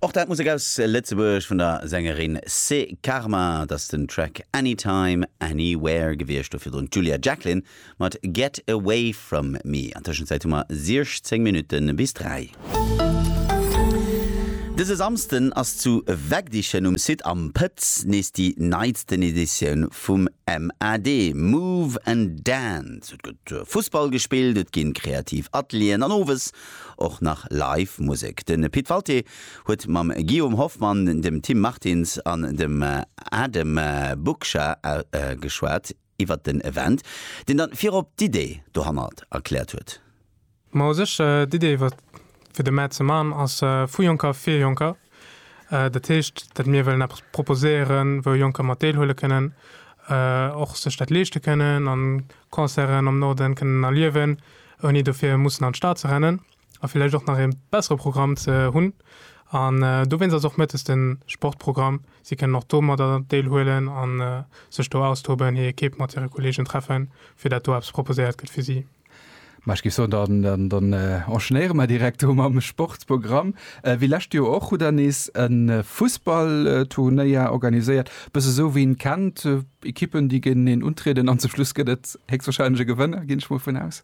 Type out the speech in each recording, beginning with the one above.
Och dat Musek aus Lëtzebuerg vun der Sängerin Se Karma. Et ass den Track Anytime, Anywhere gewiescht, do virdrun d'Julia Jacklin mat Get Away From Me. An Tëschenzäit hu mer 16 Minutte bis 3. Dëse Samsden ass zu Wegdichen um Site Am Pëtz nees déi neitsten Editioun vum MAD, Move and Dance. Et gëtt Fussball gespillt, et ginn kreativ Atelieren an owes Och nach Live Musek. De Pit Walté huet mam Guillaume Hoffmann, dem Tim Martins an dem Adem Buksha geschwat iwwert den Event, deen dann virop d'Idee dohannert erkläert huet. Ma u sech, d'Idee iwwert fir de Mä ze man ass vu Jonker fir Jonker. Dat heescht, datt mir wëllen eppes proposéieren, wou Jonker mat deelhuele kënnen, och sech dat leeschte kënnen an Concerten am Norden kënnen erliewen. ouni dofir mussen an d'Stad ze rennen a villäicht och nach ee bessere Programm ze hunn. An dowéinst ass och mëttes de Sportprogramm. Si kënnen och do mat Deel huelen a sech do austoben, hir Ekipp mat hire Kolleegen treffen, fir dat do eppes proposéiert gëtt fir si. Mä ech géif soen, dann enchaînéiere mer direkt do mam Sportprogramm. Wéi lescht Joer och hutt Der nees e Fussballturnéier organiséiert, e bësse sou wéi een kennt. Ekippen, déi géinteneen untrieden an zum Schluss gëtt et héchstwahrscheinlech e Gewënner, ginn ech mol vun aus.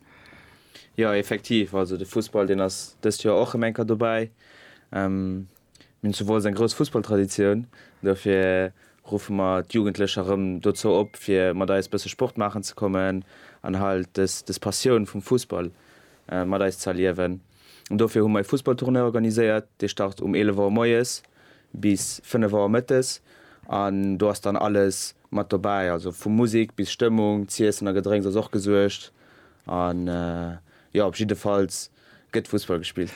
Jo, effektiv. Also de Fussball, deen ass dëst Joer och rëm eng Kéier dobäi. Mir hunn zu Wolz eng grouss Fussballtraditioun. Dofir ruffe mer d'Jugendlecher rëm dozou op, fir mat eis e bësse Sport maachen ze kommen an halt dës, dës Passioun vum Fussball mat eis ze erliewen. An dofir hu mer e Fussballtournoi organiséiert. Dee start um 11 Auer moies. bis 5 Auer mëttes an do ass dann alles mat dobäi, also vu Musik bis Stëmmung, z'iessen a Gedrénks ass och gesuergt an jo op jiddefalls gëtt Fussball gespillt.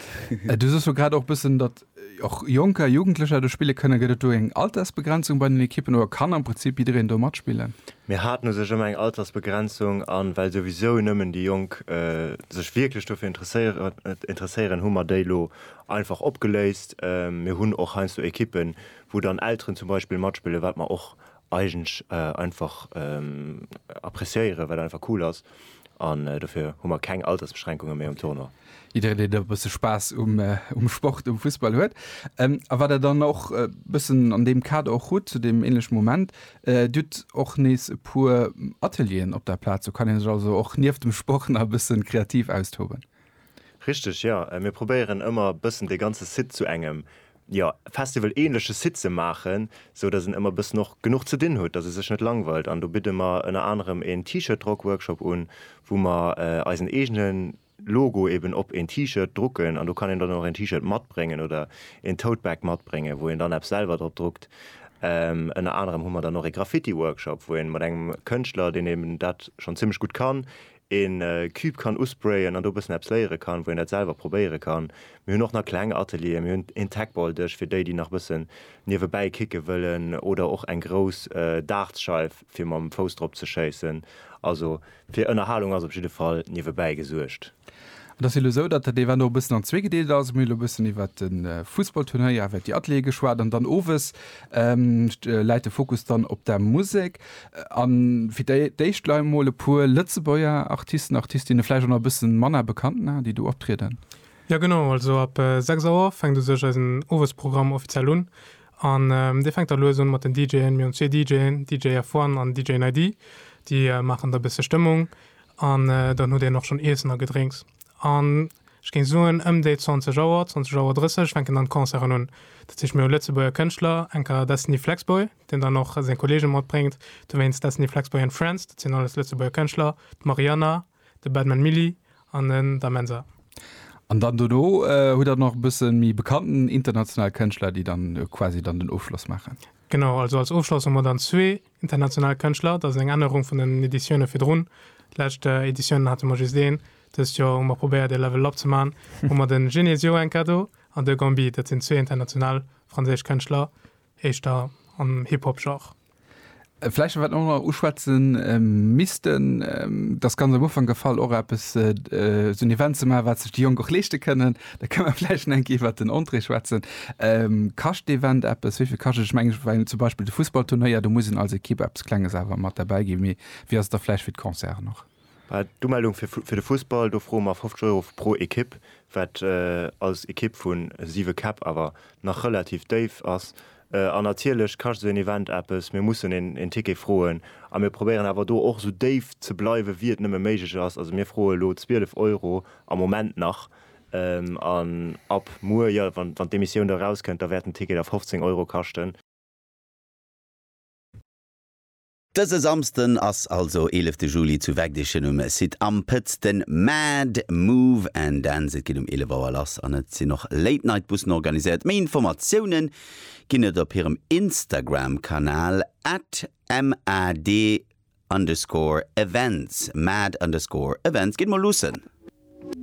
Du soos jo grad och bëssen, datt och Jonker, Jugendlecher do spille kënnen. Gëtt et do eng Altersbegrenzung bei den Ekippen oder kann am Prinzip jiddereen do matspillen? Mir haten u sech ëmmer eng Altersbegrenzung an well souwisou nëmmen déi Jonk sech wierklech dofir interesséieren, hu mer déi elo Einfach opgeléist. Mir hunn och heiansdo Ekippen, wou dann Elteren zum Beispill matspillen, wat mer och eigentlech einfach appreciéieren, wat einfach cool ass. An dofir hu mer keng Altersbeschränkungen méi um Tournoi. Jiddereen, deen e bësse Spaass um Sport, um Fussball huet a wat der dann och e bëssen an deem Kader och hutt, zu deem änleche Moment, Dir hutt och nees e puer Atelieren op der Plaz. Do kann ee sech also och nieft dem Sport nach e bësse kreativ austoben. Richteg, jo. Mir probéieren ëmmer e bëssen de ganze Site zu engem, jo, Festival-ähnleche Site ze maachen, sou dass en ëmmer e bëssen och genuch ze dinn huet, dass e sech net langweilt. An do bidde mer ënner anerem een T-Shirt-Drock-Workshop un, wou mer eisen eegene Logo eben op een T-Shirt drucken. An do kann een dann och een T-Shirt matbréngen oder een Tote-Bag matbréngen, wou een dann eppes selwer drop druckt. Ënner anerem hu mer dann och ee Graffiti-Workshop, wou ee mat engem Kënschtler, deen eben dat schonn zimlech gutt kann, een Cube kann usprayen an do e bëssen eppes léiere kann, wou een dat selwer probéiere kann. Mir hunn och nach kleng Atelieren, mir hunn een Tacball-Dësch fir déi, déi nach e bëssen niewebäi kicke wëllen oder och eng grouss Dartsscheif fir mam Fouss drop ze schéissen. Also fir Ënnerhalung ass op jidde Fall niewebäi gesuergt. Et ass jo elo esou, datt dat Event och e bëssen an zwee gedeelt ass. Mir hunn elo e bëssen iwwert de Fussballturnéier, iwwert déi Ateliere geschwat an dann owes läit de Fokus dann op der Musek. A fir d'éischt lei mol e puer Lëtzebuerger Artisten, Artistinne, vläicht och nach e bësse manner bekannt Namen, déi do optrieden. Jo genau, also ab 6 Auer fänkt u sech eisen Owesprogramm offiziell un. An dee fänkt da lues un mat den DJen. Mir hunn zwee DJen, DJ F-One an DJ Nady, déi maachen da e bësse Stëmmung. An dann hutt een och schonn Iessen a Gedrénks. An ech géing soen, ëm déi 20 Auer, 20 Auer 30 fänken dann d'Concerten un. Dat heescht, mir hu Lëtzebuerger Kënschtler, enker Destiny Flex Boy. deen dann och seng Kolleege matbréngt, dowéinst Destiny Flaxboy and Friends, dat sinn alles Lëtzebuerger Kënschtler, d'Mariana, de Badman Milly an den Da Mensa. An dann dono hutt der nach e bësse méi bekannten international Kënschtler, déi dann quasi dann den Ofschloss maachen. Genau, also als Ofschloss hu mer dann zwee international Kënschtler, dat ass eng Ännerung vun den Editioune virdrun. Lescht Editiounen hate mer just een, dëst Joer hu mer probéiert ee Level up ze maachen, hu mer de Genesio Enka do an de Gambi, dat sinn zwee international franséisch Kënschtler, éischter am Hip-Hop-Genre. Vläicht wat mer och nach uschwätze missten, dat ass ganz am Ufank gefall, och eppes, esou en Event ze maachen, wat sech déi Jonk och leeschte kënnen. Da kënne mer vläicht nach eng Kéier iwwert den Entrée schwätzen. Kascht d'Event eppes? Wéi vill kascht et? Ech mengen, well zum Beispill de Fussballturnéier, do muss een als Ekipp eppes Klenges awer mat derbäi ginn. Mee wéi ass et da vläicht fir d'Concerten och? D'Umeldung fir de Fussball, do froe mer 50 Euro pro Ekipp, wat als Ekipp vu siwe Käpp awer nach relativ déif ass. An natierlech kascht esou een Event eppes, mir mussen een Ticket froen a mir probéieren awer do och esou déif ze bleiwe wéi et nëmme méiglech ass. Also mir froe elo 12 Euro am Moment nach an ab muer, jo wann d'Emissioun da erauskënnt, da wäert den Ticket da 15 Euro kaschten. Dëse Samsden ass also eelefte Juli zu Wegdechen um Site Am Pëtz den Mad Move and Dance. Et geet um 11 Auer lass an et sinn och Late Night Bussen organiséiert. Méi Informatiounen ginn et op hirem Instagram Kanal at mad underscore events. Mad underscore events. Gitt mol luussen!